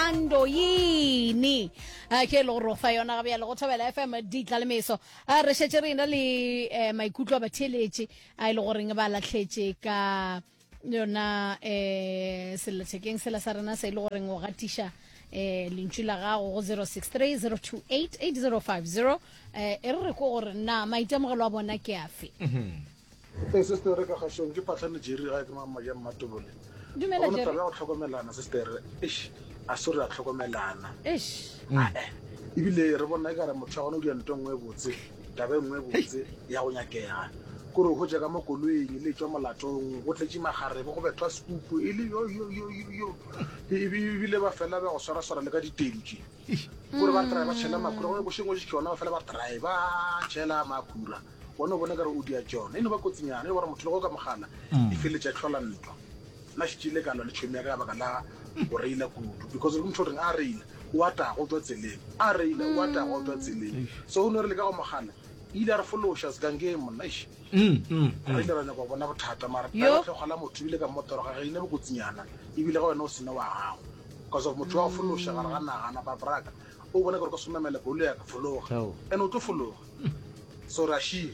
thando yini a ke le gore fa yona ga bjale go thobela fm ditla le meso a re šetse re ena le um maikutlo a batheeletše a e le goreng ba latlhetše ka yona eh selethekeng sela sa rena se e le goreng o gatiša eh lentšu la gago go 063 028 8050 eh e re ko gore na maitemogelo a bona ke afe ee sestere ka kgašong ke patlhane jeri ga ke mama ya mmatobole dumela jere go tlhokomelana sestere eish a se re a tlhokomelana eish ebile re bona e ka re motho ya gona o dira nto nngwe e botse Taba e nngwe e botse ya go nyakega kore o hotse ka mo koloing le tswa molatong go tletše magarebo go bethwa sekupu e le yoyoyoyoyo ebile ba fela ba go swaraswara le ka ditedi tše kore ba try ba tšhela makhura gone bošeng o je tšona ba fela ba try ba tšhela makhura gone o bone kare o dia tšona e no ba kotsinyana e gore motho le go ka mogala e feletša tlhola ntwa Nna šetše ile ka lwa le tšhomi ya ka ka baka la go reila kudu because motho o reng a reila o a taga o tšwa tseleng, a reila o a taga o tšwa tseleng. So o no re le ka go mogala e ile a re fološa segangeng monna eish. Re ile ra nyaka go bona bothata mara taba ya tlhogo la motho ebile ka mmotoroga ga e ne bokotsinyana ebile ga wena o sena wa gago because of motho wa go fološa gare ga naga napa braka o bone gore ka se o namela koloi ya ka fologa and o tlo fologa so ra šie.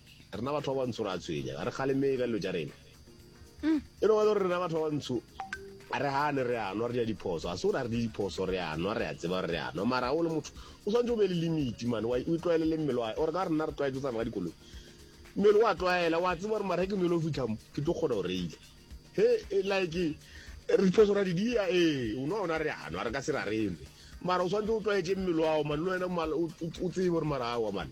rena batho ba bantsho re a tshwenya ga re kgalemee ka dilo tša rena e no ba gore rena batho ba bantsho a re gane re anwa re ja diphoso ga se gore a re di diphoso re anwa re a tseba re anwa mara o le motho o tshwanetse o be le limiti mane o e tlwaele le mmele wa ore ka rena re tlwaetse o tsana ka dikoloi mmele wa tlwaela wa tseba gore mara ke nelo o fitlhamo ke tlo kgona go reile he e like diphoso ra di dia ee o ne ona re anwa re ka se ra reme mara o tshwanetse o tlwaetse mmele wao mane le wena o tsebe gore mara awa mane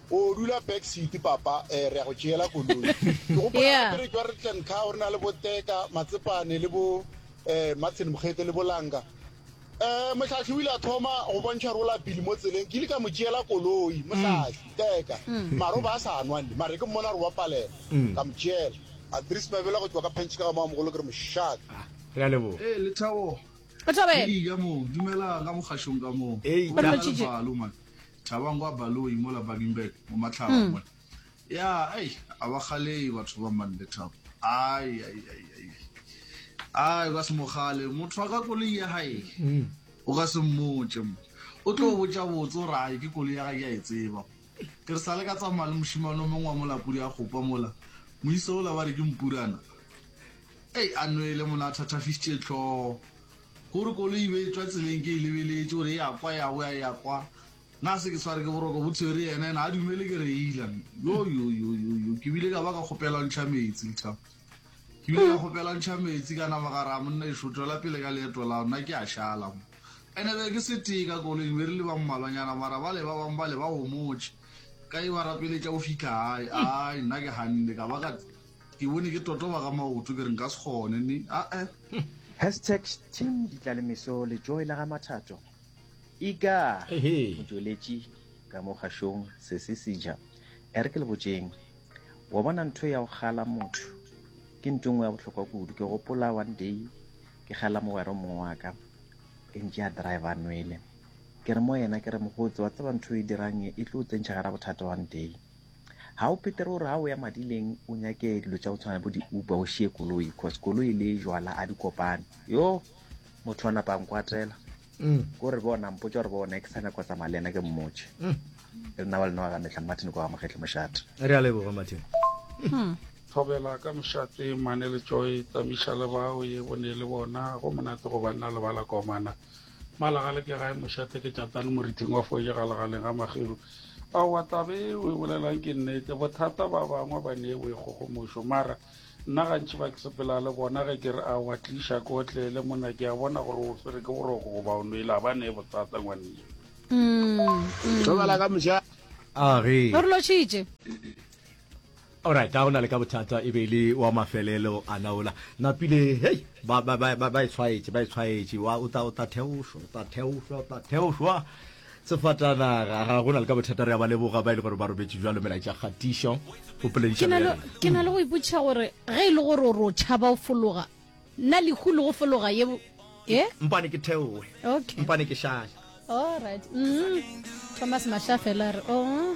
O dula back seat papa eh, re ya go tšeela koloi. Ke gopola Yeah. gape re tšwa re tla nka o re na le bo Teka, Matsepane le bo eh, Matsheni Mokgete le Bolanga. Eh, Mohlahli o ile a thoma go bontšha rola pele mo tseleng, ke ile ka mo tšeela koloi, Mohlahli, Teka. Mara o ba a sa nwa nne, mara ke mmona gore wa palela, ka mo tšeela. Andries Mabela go tšwa ka Pantšhe ka ga Mamogolo ke re mošaka. Re a leboga. Ee, Lethabo, Lethabo, ee. Eya moo, dumelang ka mo kgašong ka moo. Ee, Go na le Re lotšitše. balo, man. Thabang kwa Baloyi mola Baginberg mo Matlhaba mm. mona. Ya, ai, a ba kgalei batho ba man le Thabo. Ai, ai, ai, ai. Ai, ba se mo kgale. Motho wa ka koloi ya hae. Mm. O ka se mmotse mo. O tlo mm. botsa botse gore ai ke koloi ya ga ke a e tseba. Ke re sa le ka tsamaya le moshimane o mongwe wa molapodi a gopa mola. Moisa ola ba re ke mpurana. Ei, a nwele mona a thathafisitse tlhogo. Gore koloi e be e tšwa tseleng ke e lebeletše gore e a kwa ya boya e a kwa, na se ke tshware ke boroko bo tshwere yena yena a dumele ke reila. Yoyoyoyoyo ke bile ka ba ka kgopela ntšha metsi lthabo ke bile ka kgopela ntšha metsi ka nama ka raa monna ešo tšwela pele ka leeto lao nna ke a šala mo ene be ke se tee ka koloing be re le ba mmalwanyana mara ba le ba bang ba le ba homotše ka e ba rapeletša go fihla gae ai nna ke ganne ka ba ka Ke bone ke totoba ka maoto ke re nka se kgone ni ae. Hashtag Team Ditlalemeso le Joy la ga Mathato. Ika Ehe. o tšweletše ka mo kgašong se se seja. E re ke le botšeng. Wa bona ntho ya go kgala motho ke ntho e nngwe ya bohlokwa kudu. Ke gopola one day ke kgala mogwera o mongwe wa ka e ntše a driver a nwele. Ke re mo yena ke re mogotse wa tseba ntho e dirang e, e tlo o tsentšha gara bothata one day. Ga o phethe gore ga o ya madileng o nyake dilo tša go tshwana bo di-uber o šie koloi cause koloi le jwala a di kopane yo motho wa napa nkwatela mm. ko re bona mpotsa gore bona ke sa nyako tsamaya le ena ke mmotse mm. re nna wa lena wa ga metlha martin kwa ga mogetle mošate re a leboga martin hmm. thobela ka mošate mane le joy tsamisa le bao ye bone le bona go monate go banna le bala komana Malagale ke gae mošate ke tšatane morithing wa foje ga legaleng ga magero aowa taba e o e bolelang ke nnete bothata ba bangwe ba ne o e kgogomošo mara nna gantši ba ke sepela le bona ge ke re a wa tliša ke otlele mona ke a bona gore o swere ke boroko goba o nwele a ba ne e bothata ngwanne mm, mm. ka moša a re Alright, ga go na le ka bothata, e be e le wa mafelelo a naola. Napile, hei, ba, ba, ba, ba e tshwaetše, ba e tshwaetše, wa, o tla, o tla theošwa, o tla theošwa, o tla theošwa. Sefatanaga, ga go na le ka bothata, re a ba leboga ba e le gore ba robetše jwalo melaetša kgatišo. O polediša bjang? Ke na le go ipotšiša gore ge e le gore o re o tšhaba o fologa, na lehu le go fologa ye e eh? mpane ke theoe okay. mpane ke šale alright mm. thomas mashafela re o oh.